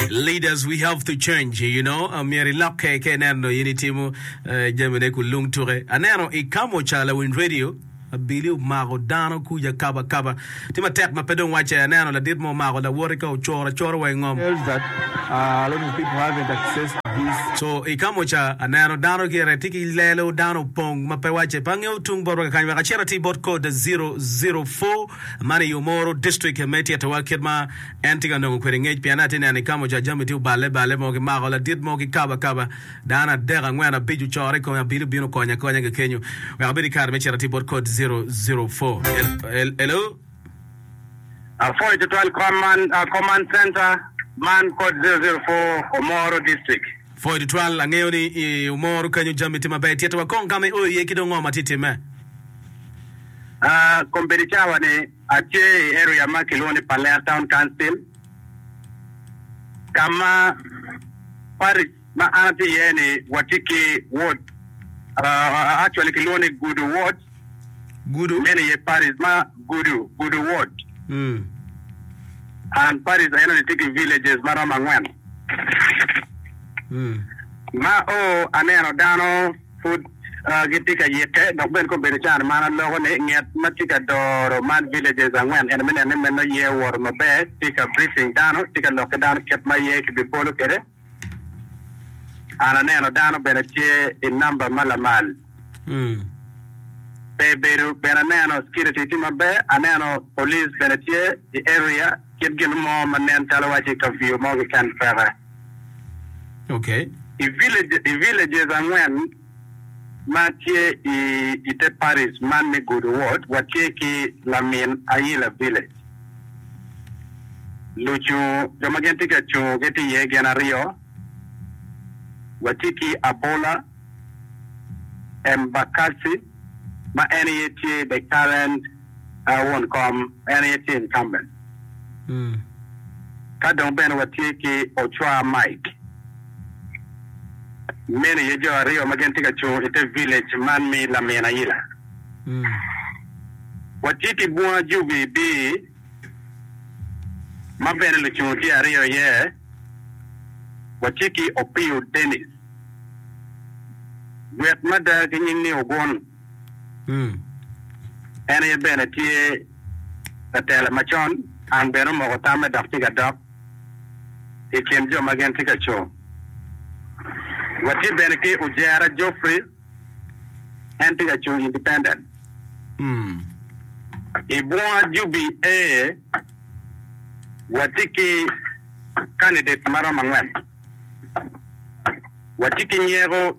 Leaders we have to change you know myero ilokke ka ineno in itimo jami ne ku lung tuke aneno i kamoca lawiny radio abili omako dano kuca kaba kaba tye matek ma pe dong wacce aneno ladit mo omako lawoti ka ocoro acora wa ingom so i kamoca aneno dano gire tye ki lelo dano opong ma pe wacce pe angeyo tung bot wa kakany wek acit ati bot code 004 man i omoro district me tyetowa kit ma En tye ka nongo kwede ngec pien atye neno i kama oca jami tye oballe balle mo ki mako ladit mo ki kaba kaba. Dano adek, angwen, abic ocoro i kome abino bino konya konya ga kenyo wek abed ki kare me cito atir bot code zero zero four. Hel, hello? Apwoyo tutwal command center man code zero zero four Omoro district. Pwoyo tutwal, angeyo ni i Omoro kenyo jami tye maber tyet wa kong kama i oyo iye ki dong ngo ma tye time? Aa, kom bedo cawa ni. Atye i area ma kilwongo ni Palea Town Council ka ma parish ma an atye iye ni watye ki ward actually kilwongo ni Gudu ward. Gudu. Meno iye parish ma Gudu, Gudu ward. And parish eno ni tye ki villages ma romo angwen. Ma o aneno dano Pud gitye ka yikke dok bene ka obedo can man aloko ni nget ma tye ka doro man villages angwen ento me neno ni meno aye owoto maber tye ka briefing dano tye ka lok ki dano kit ma aye ki bi bolo kwede and aneno dano bene tye i number ma lamal pe bedo bene aneno security tye maber aneno police bene tye i area Kit gin mo ma nen calo wacci kaviyo mo keken peke. Okay. I villages, i villages angwen ma tye i i te parish man me Gudo Ward, watye ki lamin Ayila Village. Lucung, jo ma gin tye ka cungo gitye iye gin aryo, watye ki Abola Embakasi ma en aye tye the current. Aa won kom, en aye tye incumbent. Ka dong bene watye ki Ochwa Mike. Meno aye jo aryo ma gin tye ka cung ite village man mi lamin aila. Watye ki bunga jubi biri ma bene lucung tye aryo iye. Watye ki Opiyo Dennis, gwet mada ki nying ni Ogun. En aye bene tye latela macon. An bene omoko tamme dok tye ka dok i kin jo ma gin tye ka co. Watye bene ki Ojera Geoffrey, en tye ka co independent. I bunga jubi aye watye ki candidate maromo angwen. Watye ki nyeko.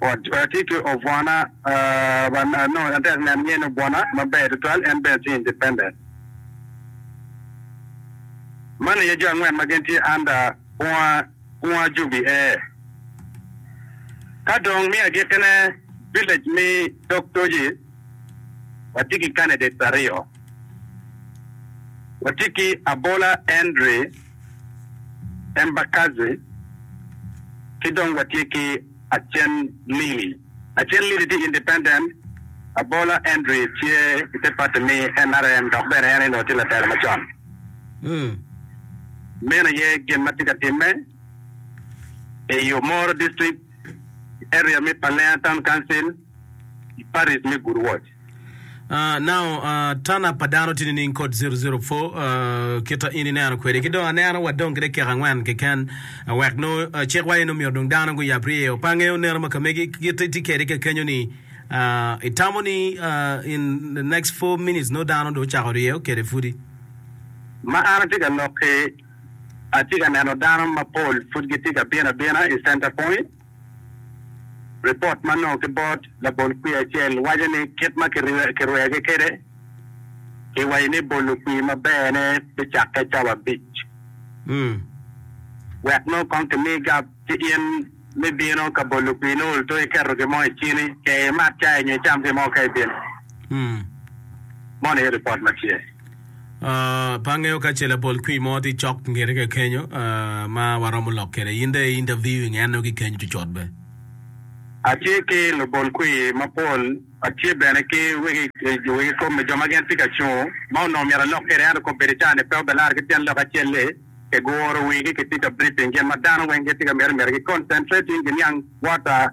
Atye ki obwona ma nongo atye ka neno ni obwona maber tutwal en bene tye independent. Man aye jo angwen ma gin tye under bunga bunga jubi e. Ka dong me agikkine village me dog toji watye ki candidates aryo, watye ki Abola Henry, Embakasi, ki dong watye ki Acen Lili. Acen Lili tye independent, Abola Endri tye i te pati mi nrm dok bene en onongo tye latelo macon. Meno aye gin ma tye ka timme i Omoro District, Area me Palena Town Council. i Paris me Good Watch. Uh, now, uh, tana pa dano tye nining kod 004 uh, kita in ineno kwede ki dong aneno wa dong kede kek angwen keken uh, wek no uh, cik wa eno myero dong dano guyab riye o pange o neno makamegi kit iti kede kekenyo ni uh, itamo ni uh, in the next 4 minutes no dano do chako riye o kede fudi ma an atye ka lok ki atye ka neno dano mapol pud gitye ka bino abina i center point Ripot ma onongo ki bot labol kwir acel waco ni kit ma kirwegi kwede i wa ni bolo kwir maberne bicakke cawa abic wek nongo kong kimi gap ci in me bino ka bolo kwir nongo olto iketo gin mo i cini kee imat cai nyo icam gin mo ka ibino. Mono aye ripot ma tye. Pe angeyo ka ce labol kwir mo tye cok ngete ka kenyo ma waromo lok kwede. In dong i interview i ngeno ki kenyo cocot be. Atye ki lubol kwir mapol, atye bene ki wegi kop me jo ma gin tye ka cungo ma onongo myero alok kwede ento kop bedo ca ni pe obilar ki pien lok acel-li. Kiguro wigi kitye ka briefing gin ma dano weng gitye ka mito mito gi concentrating ki niang water.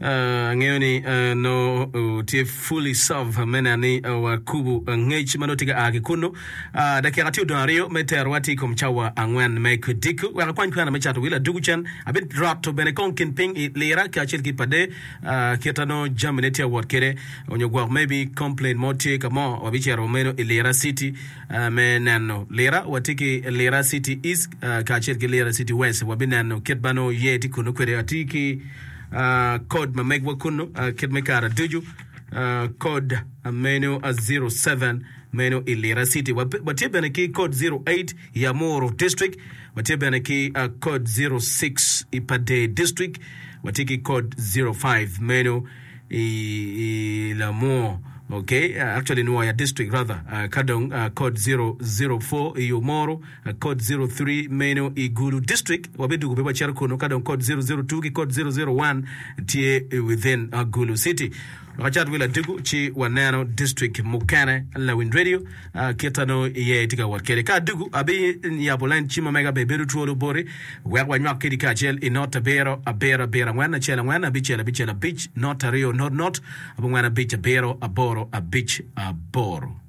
Angeyo ni nongo tye fully serve me neno ni wakubo ngec ma nongo tye ka a ki kunnu. Dakika tye odong aryo me terowa tye i kom cawa angwen me kodiko. Wek akwany kwena me cato wil adwogo cen, abiroto bene kong kin piny i lira ki acel ki pade kit ma nongo jamine tye ka wot kwede. Onyo gwok maybe complain mo tye ka mo, wabicito meno i Lira City me neno. Lira, watye ki Lira City East kacel ki Lira City West. Wabineno kit ma nongo yer tye kunnu kwede. Atye ki. Kod ma megwa kunnu kit me kara ducu, kod meno 07 meno i Lira City. Watye bene ki kod 08 i Amuru District. Watye bene ki kod 06 i Padee District. Watye ki kod 05 meno i, i Lamur. Okay, actually Nwoya District rather. Ka dong kod 004 i Umuru. A Kod zero three meno i Gulu district wabidwogo be wacito kunu ka dong Kod zero zero two ki Kod zero zero one tye i within Gulu city. Wek acat wi ladegu ci waneno district mukene Lawiny Radio kita nongo iye itye ka wot kede. Ka adugu abi yabo lain cim ma mega be bedo twolo boti wek wanywak kedi kacel i not abiro abiro abiro angwen acel angwen abicel abicel abic not aryo not not abongwen abic abiro aboro abic aboro.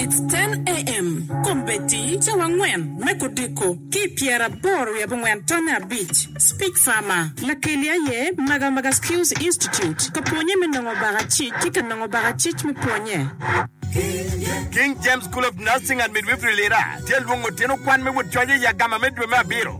It's ten AM, Kom Betty, Cawa angwen me kodiko, ki i pyera aboro wiye abongwen tonne abic, Speak Farmer, Lakeli aye Magamaga Skills Institute ka pwonye me nongo baka cic ki ka nongo baka cic me pwonye. King James School of Nursing and Midwifery Lira tye lwongo tyen okwan me wod coc i Agama me dwe me abiro.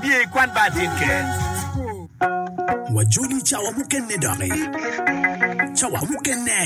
Biye i kwan bar tin ker. Wajoli cawa mukene doki. Cawa mukene.